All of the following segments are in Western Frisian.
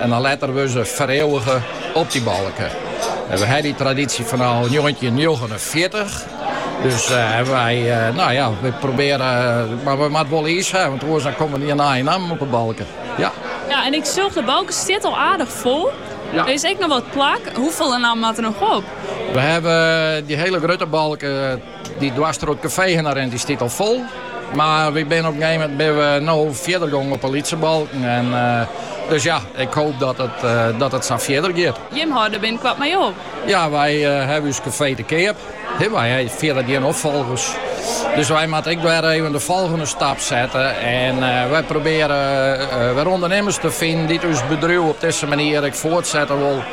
En dan letter wurde se fereeuwige op dy balke. En we ha dy tradisje fanôf njoggentjin njoggenenfjirtich. Dus wy, nou ja, we probearje, mar we moatte wol iis ha, want oars dan komme der gjin nije nammen op 'e balke. Ja. Ja, en ik sjoch, de balke stiet al aardich fol. Ja. Der is ek noch wat plak. Hoefolle nammen moatte der noch op? We hawwe dy hiele grutte balke. Dy dwars troch it kafee hinne rint dy stiet al fol. Mar wy binne op in gegeven moment no fierder gongen op 'e lytse balken. En dus ja, ik hoop dat it sa fierder giet. Jim hâlde binnenkoart mei op. Ja, wy hawwe ús kafee te keap. Wy ha fierder gjin opfolgers. Dus wy moatte ek wer even de folgjende stap sette. En wy probearje wer ûndernimmers te finen dy't ús bedriuw op dizze manier ek foartsette wol.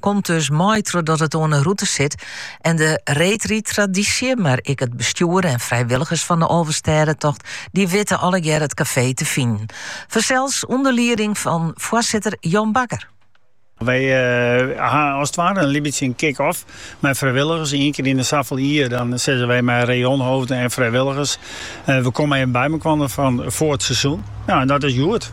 komt dus mei trochdat it oan de rûte sit en de reedrydtradysje, mar ek it bestjoer en frijwilligers fan de Alvestêdetocht, dy witte allegear it kafee te finen. Fansels ûnder lieding fan foarsitter Jan Bakker. Wy ha as 't ware in bytsje in kick-off mei frijwilligers. Ien kear yn de safel jier dan sizze wy mei rayonhoofden en frijwilligers, we komme even bymekoarne fan foar 't seizoen. Nou, en dat is hjoed.